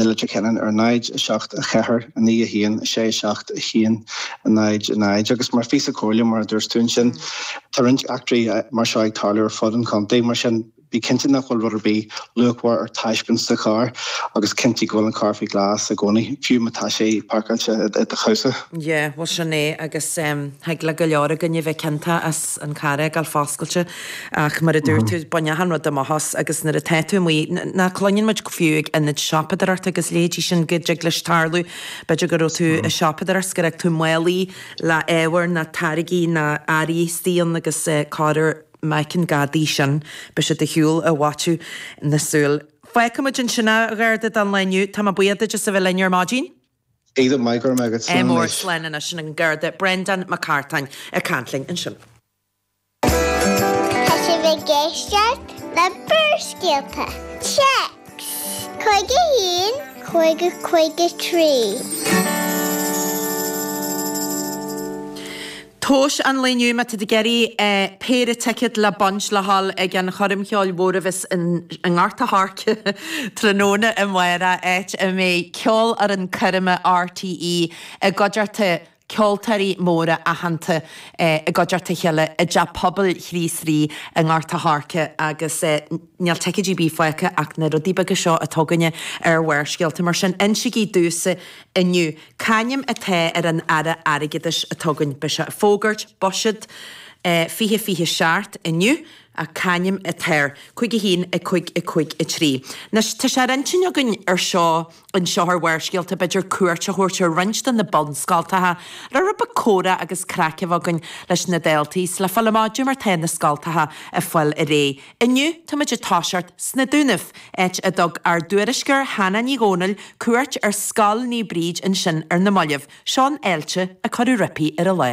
na Leitir Ceanainn ar 0, 7, 4, 9, 1, 6, 7, 1, 0, 0 agus mar phíosa comhairle mar a dúirt tú ansin tá roinnt eachtraí mar seo ag tarlú ar fud an chontae mar sin bí cinnte nach bhfuil rud ar bith luachmhar ar taispeáint sa charr agus cinntigh go bhfuil an carr faoi ghlas i gcónaí, fiú má tá sé páirceáilte i do chabhsa. Yeah, bhuel sin é agus thig le go leor againn a bheith ciontach as an carr a fhágáil foscailte. Ach mar a dúirt tú, bain achan rud amach as agus nuair atá tú amuigh, nó cluineann muid go fiú ag ionaid siopadóireachta agus leithéidí sin go dtig leis tarlú, b'fhéidir go raibh tú ag siopadóireacht 's go raibh tú málaí le ábhar nó táirgí nó earraí istigh ann agus corr uair má fheiceann gadaí sin beidh sé ar shiúl i bhfaiteadh na súl. Fágfaimid ansin a Gharda don lá inniu, tá mé buíoch duit as a bheith linn ar maidin. Aodh maith go raibh maith agat, slán anois. Mór, slán anois, sin an Garda Brendan Mac Cartáin ag caint linn ansin. Tá sibh ag éisteacht le Barrscéalta, Téacs, 51, 50, 53. Tomhas an lae inniu má tá tú ag iarraidh péire ticéad le baint le ghabháil ag an choirm cheoil mhóir a bheas i nGort a' Choirce tráthnóna amárach áit a mbeidh Ceolfhoireann Coirme RTÉ i gcuideachta ceoltóirí móra aitheanta i gcuideachta a chéile i dTeach Pobail Chríost Rí i nGort a' Choirce agus níl ticéidí ar bith fágtha ach na rudaí beaga seo atá againne ar Bharrscéalta. Mar sin, insigí domhsa inniu, c'ainm atá ar an Aire Airgeadais atá againn. Beidh sé ag fógairt Buiséad 2027 inniu ach c'ainm atá air? Cúig a haon, a cúig, a cúig a trí. Anois, tá sé ar intinn againn ar Seó. anseo ar Bharrscéalta b'fhéidir cuairt a thabhairt ar roinnt de na bunscoltacha le rud beag comhrá agus craic a bheith againn leis na daltaí 's le fáil amach cad é mar tá na scoltacha ag fáil ar aghaidh. Inniu táimid ag toiseacht sna Dúnaibh, áit a dtug ár dtuairisceoir Hannah Ní Dhomhnaill cuairt ar Scoil Naomh Bríd ansin ar na mallaibh. Seo an fháilte a cuireadh roimpi ar an lá.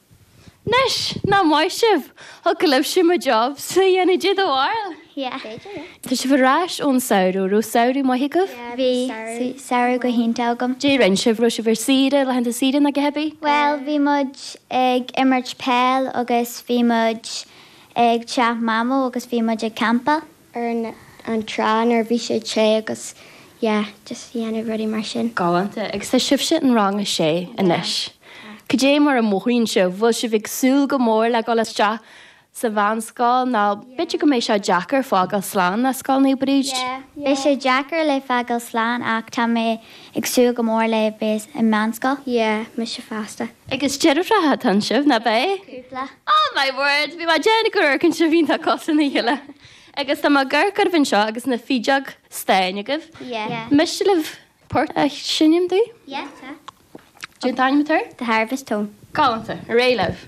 Anois, nach maith sibh! Thiocfadh libhse mo jobsa a dhéanamh di dá bharr? Yeah. B'fhéidir, yeah. Tá sibh ar ais ón samhradh. Raibh samhradh maith agaibh? Yeah, bhí samhradh go hiontach agam. Cad é a rinn sibh? Raibh sibh ar saoire, laethanta saoire nó cad é? Bhuel, bhí muid ag imirt peil agus bhí muid ag teach Mamó agus bhí muid ag campáil. ar an an trá nuair a bhí sé te agus yeah just ag déanamh rudaí mar sin. Galánta. Agus tá sibhse in Rang a Sé anois. Cad é mar a mothaíonn sibh? Bhfuil sibh ag súil go mór le dhul isteach sa mheánscoil nó b'fhéidir go mbeidh sé deacair fágáil slán le Scoil Naomh Bríd? Yeah, beidh sé deacair le fágáil slán ach tá mé Ag súil go mór le bheith ag meánscoil. Yeah, mise fosta. Agus deirfiúracha atá ansin, nach beidh? Cúpla. Oh my word! Bhí mé ag déanamh gur ceoltóirí sibh iontach cosúil lena chéile. Agus tá mo ghiotár agam anseo agus na fideoga stáin agaibh. Yeah. An miste libh port a sheinm dúinn? Yeah, tá. Cén t-ainm atá air? The Harvest Home. Galánta. Réidh libh.